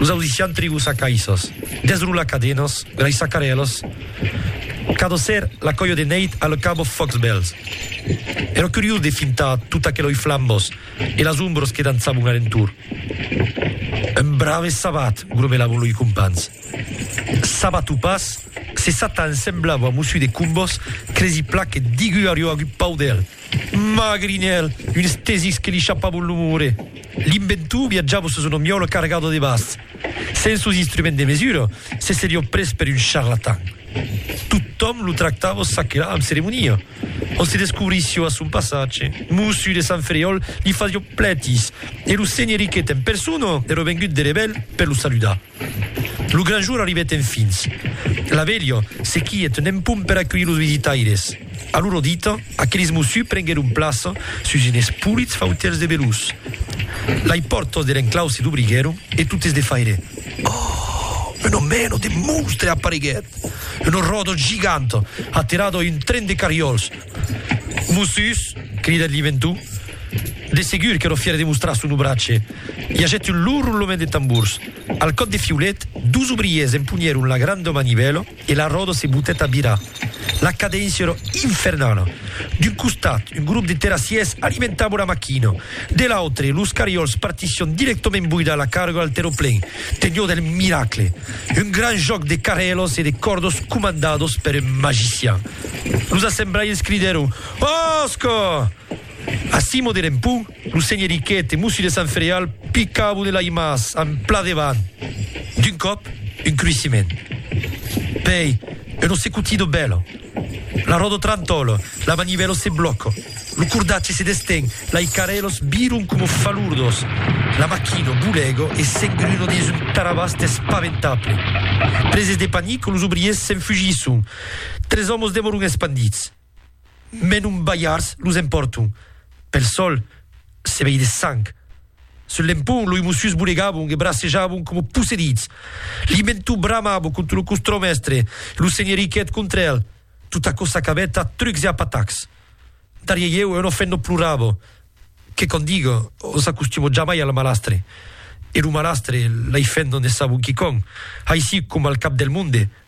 Los ausissian tribus acaissas, desrolar cadenas, graissar carèlas, cadosser la còia de nèit a le cabo Foxbells. Èra curiós de fintar tot aqueloi flambós e las ombros que dançavon a l'entorn. Un brave sabat, gromelavon loi companhs. Sabat o pas, se Satan semblava a Mossu de Combos, cresi plan que Digu ariò agut pau d'el. Mah, Grinèl, un estesix que li chapavon lo more! L'inventor viatjava sus una miòla cargada de bas. Sens sos instruments de mesura, se seriá pres per un charlatan. Totòm lo tractava çaquelà amb ceremonia. Ont se descobrissiá a son passatge, Mossu de Sant Ferriòl li fasiá plètis e lo senheric Quet en persona èra vengut de Revel per lo saludar. Lo gran jour arribèt enfins. La velha se quièt n'en pum per aculhir los visitaires. A loro dita, aqueles mossus prenguèron plaça sus enes polits fautèls de velús. Lai pòrtas der enclau se dobriguèron e totes de faire, Oh! Una mena de monstre apareguèt! Una ròda giganta, aterada a un tren de carriòls! Mossus! cridat Liventou. De segur qu'èra fièr de mostrar son obratge. I agèt un lourd roulament de tambors. Al còp de fiulet, dus obrièrs empunhèron la granda manivèla e la ròda se botèt a virar. La cadéncia èra infernala. D'un costat, un grop de terrassièrs alimentava la maquina. De l'autre, los cariòls partissián dirèctament boidar la carga al terraplen. Teniá del miracle. Un grand jòc de carrèlas e de còrdas comandadas per un magician. Los assemblaiers cridèron, Òsca! A Simo de Rempon, lo senheriquet e Mossu de Sant Fereal picavon el aimàs en plan devant. D'un còp, un cruissiment. Pei, un ossecutido bèla. La ròda trantòla, la manivèla se blòca, lo cordatge se desten, lai carèlas viron coma falurdas. La maquina bolega e s'engruna dins un tarabàs despaventable. Preses de panic, los obriers s'enfugisson. Tres òmos demoron espandits. Mès non balhards los empòrton. Pel sòl se vei de sang. Sul lempon loi mosius bolegabon e bracejabon coma possedits. Limentu bramabo contra lo costromèstre e lo senheriquet contra el. Tot aquò s'acabèt a trucs e a patacs. Darrier ieu un ofènt non plorabo. Que quò diga, o s'acostumo jamai al malastre. E lo malastre l'ai fèt non ne sabon quicòm. Aicí coma al cap del monde,